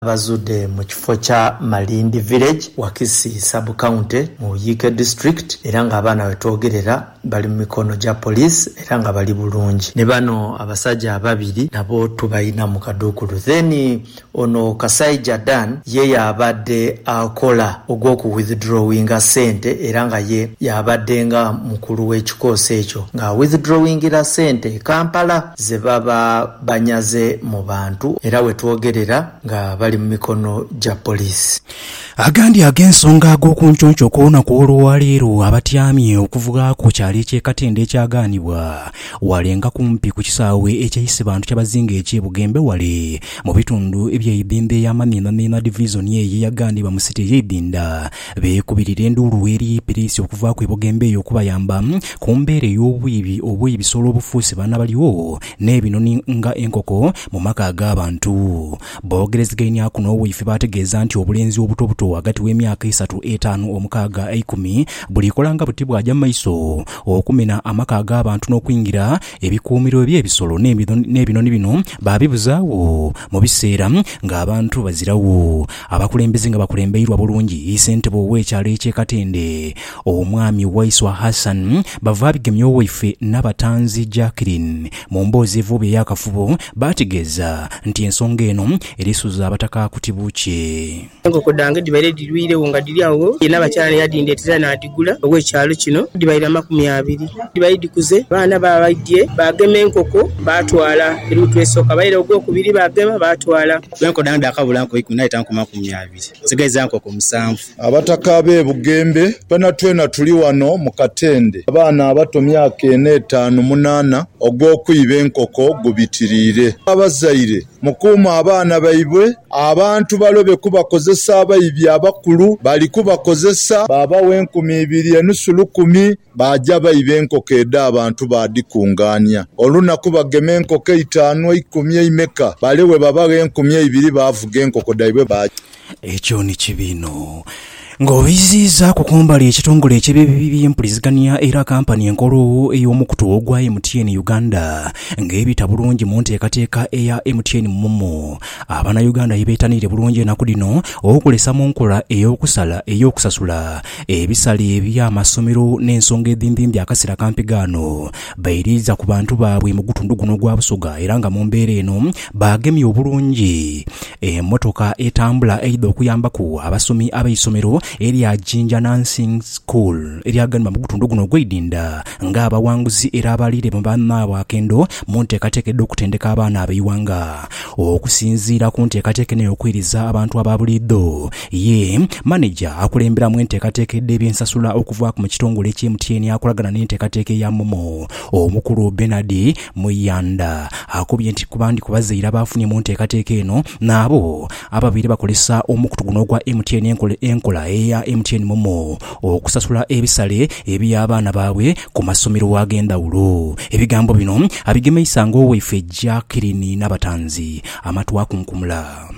Bazude mu kifo kya Malindi Village, Wakisi Sub County mu Iyike District era nga abaana wetwogerera bali mu mikono gya police era nga bali bulungi. Ni bano abasaja ababiri nabo tubalina mu kadukulu. Then ono Kasaija Dan ye yabade akola ogwoku withdrawinga sente era nga ye yabade nga mukulu wekikoosi ekyo nga awithdrawingira sente e Kampala. ze baba banyaze mu bantu era we twogerera nga bali mu mikono gya poliisi. Agandi ag'ensonga ag'okunconco okw'olunaku olwaleero abatyamye okuvuga ku kyalo eky'e Katende ekyagaanibwa wale nga kumpi ku kisaawe eky'e Isibantu Kyabazinga eky'e Bugembe wale mu bitundu eby'e Ibinda eya Mamiimamiima Divizoni eyo eyagaanibwa mu City ey'e Ibinda Beekubirira enduulu eri Ibilisi okuvaaku ebogemba eyo okubayamba ku mbeera ey'obwibi obw'ebisolo obufuuse baana balyo n'ebinoni nga enkoko mu maka ag'abantu. Boogerezegaineaku n'owaife baategeeza nti obulenzi obutobuto ghagati w'emyaka eisatu, etaanu, omukaaga, eikumi bulikola nga buti bwaja mu maiso okumena amaka ag'abantu n'okwingira ebikuumiro eby'ebisolo n'ebinoni bino baabibuzaagho mu biseera ng'abantu baziragho. Abakulembeze nga bakulembeirwa bulungi Ssentebe ow'ekyalo eky'e Katende, Omwami Waiswa Hassan Bavaabigemya Owaife Nabatanzi Jacqueline mu mboozi evooba ey'akafubo baategeeza nti ensonga eno erisuza abataka kuti bukye. Enkoko dhange dhibaire dhirwiiregho nga dhiri agho ye Nabakyala ni yadhindeetera naadhigula ow'ekyalo kino. Dhibaire amakumi abiri. Dhibaire dhikuze, abaana baabaidhie baagema enkoko baatwala. Eri mutwe esooka baire ogwokubiri baagema baatwala. Bwe nkodha nga dhaakabula nko ikumi, naita nko makumi abiri, nsigaiza nko ku musanvu. Abataka ab'e Bugembe, twenatwena tuli ghano mu katende. Abaana abato myaka ena, etaanu, munaana, ogw'okwiba enkoko gubitiriire. Abazaire, mukuume abaana baibwe, abantu balobe kubakozesa, abaibi abakulu bali kubakozesa. Baabagho enkumi ibiri, enusu lukumi. Baaja baiba enkoko edh'abantu baadhikungaania. Olunaku bagema enkoko eitaanu, eikumi, eimeka, bale bwe babagha enkumi eibiri baavuga enkoko dhaibwe baaja. Ekyo ni kibi inho. Ng'obiziizaaku ku mbali ekitongole eky'ebyempulizigania era kampani enkulu ey'omukutu ogwa MTN Uganda ng'ebita bulungi mu nteekateeka eya MTN Momo, Abanayuganda ye beetaniire bulungi enaku dhino okulesa mu nkola ey'okusala ey'okusasula Ebisale eby'amasomero n'ensonga edhindhindhi akasera kampi ghano bairiiza ku bantu baabwe mu gutundu guno ogwa Busoga era nga mu mbeera eno baagemye obulungi emotoka etambula eidha okuyambaku abasomi ab'eisomero erya Jinja Nursing School eryaganibwa mu gutundu guno ogw'eidinda nga abawanguzi era abaliire mu banaabwakendo mu nteekateeka edh'okutendeka abaana ab'eighanga. Okusinziira ku nteekateeka eno ey'okuwiriza abantu aba buliidho, Ye maneja akulemberamu enteekateeka edh'eby'ensasula okuva mu kitongole ekya MTN akolagana n'enteekateeka eya momo, Omukulu Bernard Muyanda akobye nti kuba ndi ku bazaire abaafunye mu nteekateeka eno nabo ababaire bakozesa omukutu guno ogwa MTN enkola eya MTN momo okusasula ebisale eby'abaana baabwe ku masomero ag'endhawulo. Ebigambo bino abigemeisa ng'owaife Jackeline Nabatanzi amatu akunkumula.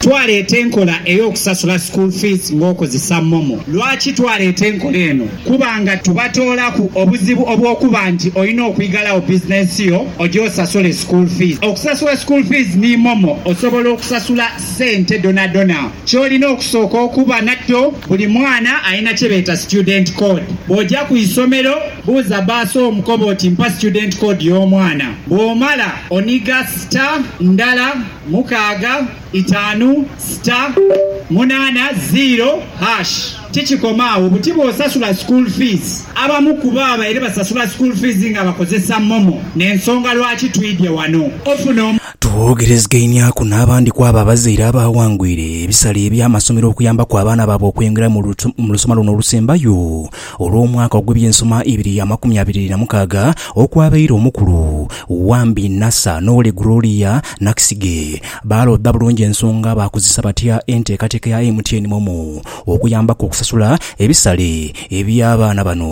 Twaleeta enkola ey'okusasula school fees ng'okozesa momo. Lwaki twaleeta enkola eno? Kuba nga tubatoolaku obuzibu obw'okuba nti olina okwigalagho bizinensi yo oje osasule school fees. Okusasula school fees ni momo osobola okusasula sente dhonadhona. Ky'olina okusooka okuba nakyo, buli mwana alina kye beeta student code. Bw'oja ku isomero, buuza bbaasa omu kobe oti mpa student code y'omwana. Bw'omala, oniga star, ndala, Mukaaga, itaanu, sita, munaana, ziiro, hash. Tikikoma agho, buti bw'osasula school fees. Abamu ku bo babaire basasula school fees nga bakozesa Momo n'ensonga lwaki twidhye ghano. Ofuna omu. Twoogerezegeinhiaaku n'abandi ku abo abazaire abaawangwire ebisale eby'amasomero okuyambaku abaana baabwe okweyongerayo mu lusoma luno olusembayo. Olw'omwaka ogw'eby'ensoma ibiri ya makumi abiri na mukaaga okwabaire omukulu, Wambi Nasser n'Ow'oli Gloria Naksige baalodha bulungi ensonga baakozesa batya enteekateeka ya MTN Momo okuyambaku okusasula ebisale eby'abaana bano.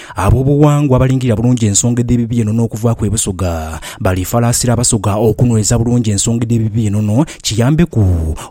Ab'obughangwa abalingirira bulungi ensonga edh'ebibi eno n'okuvaaku ebusoga, balifalaasira abasoga okunhweza bulungi ensonga edh'ebibi enono kiyambeku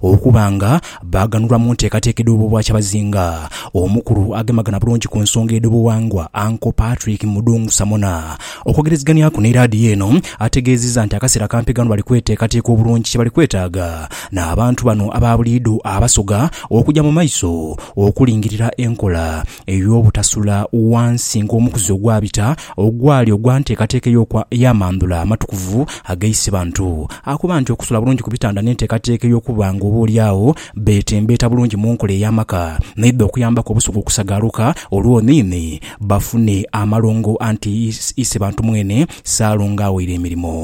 okuba nga baaghanulwa mu nteekateeka edh'obwobwakyabazinga. Omukulu agemagana bulungi ku nsonga edh'obughangwa, Uncle Patrick Mudung Samona, okwogerezeghanyaku ni laadiyo eno, ategeezizza nti akaseera kampi ghano bali kweteekateeka obulungi kye bali kwetaaga n'abantu bano aba buliidho abasoga okugya mu maiso okulingirira enkola ey'obutasula ghansi ng'omukuzi ogwabita ogwali ogwa nteekateeka ey'amandhula amatukuvu aga Isibantu. Akuba nti okusula bulungi ku bitanda n'enteekateeka ey'okuba ng'oboolyawo beetembeeta bulungi mu nkola ey'amaka n'eidha okuyambaku Obusoga okusagaaluka olwo niini bafune amalongo anti Isibantu mwene Ssaalongo awaire emirimo.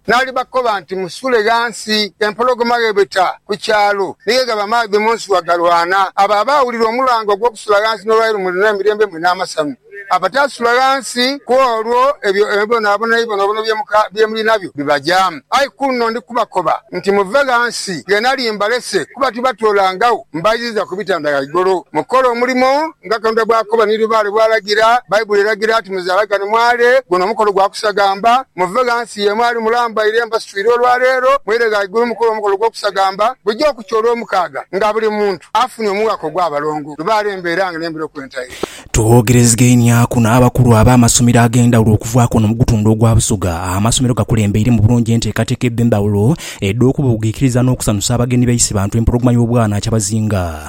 N'alibakoba nti, Musule ghansi. Empologoma gh'ebeta ku kyalo, ni gh'eghaba amaadhi mu nsuwa galwana. Abo abaawulira omulanga ogw'okusula ghansi n'olwaleero mulina emirembe mwe n'amasanhu. Abataasula ghansi ku olwo, ebyo ebibonabona ebibonabona bye muli nabyo bibajaamu. Aye kunno ndi kubakoba nti, Muve ghansi, ghe nali mbalese, kuba tibatoolangagho mbaidhiza ku bitanda ghaigulu mukole omulimo Nga Katonda bw'akoba ni lubaale bw'alagira, Baibuli eragira nti, Muzaalagane mwale, guno mukolo gwa kusagamba. Muve ghansi ye mwali mulambaire mbasitwire olwa leero, mweire ghaigulu mukole omukolo gw'okusagamba buja okukya Olwomukaaga, nga buli muntu afunye omughaaka ogw'abalongo. Lubaale mbeera nga n'embiro kwentaire. Twoogerezegainiaaku n'abakulu ab'amasomero ag'endhawulo okuvaaku wano mu gutundhu ogwa Busoga. Amasomero gakulembeiremu bulungi enteekateeka edh'endhawulo edh'okubuugiikiriza n'okusanusa abagenyi baise bantu empologoma y'obwana kyabazinga.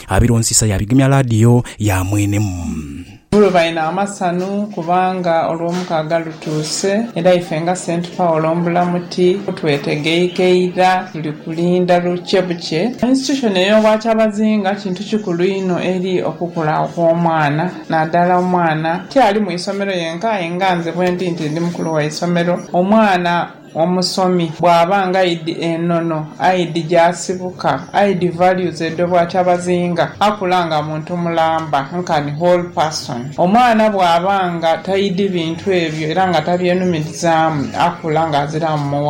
Abilonsisa yaabigumya laadiyo ya mwenemu. Olwo balina amasanu, kubanga Olwomukaaga lutuuse, era ife nga St. Paul Mbulamuti twetegeike ira. Tuli kulinda lukye bukye. Institution ey'Obwakyabazinga kintu kikulu inho eri okukula okw'omwana, nadala omwana ti ali mu isomero yenka, aye nga nze bwendi nti ndi mukulu wa isomero, omwana. Omusomi bw'aba nga aidhi enono, aidhi gy'asibuka, aidhi values edho bw'ati abazinga akula nga muntu mulamba, nkani whole person. Omwana bw'aba nga taidhi bintu ebyo era nga taby'enumirizaamu akula nga aziraamu muwala.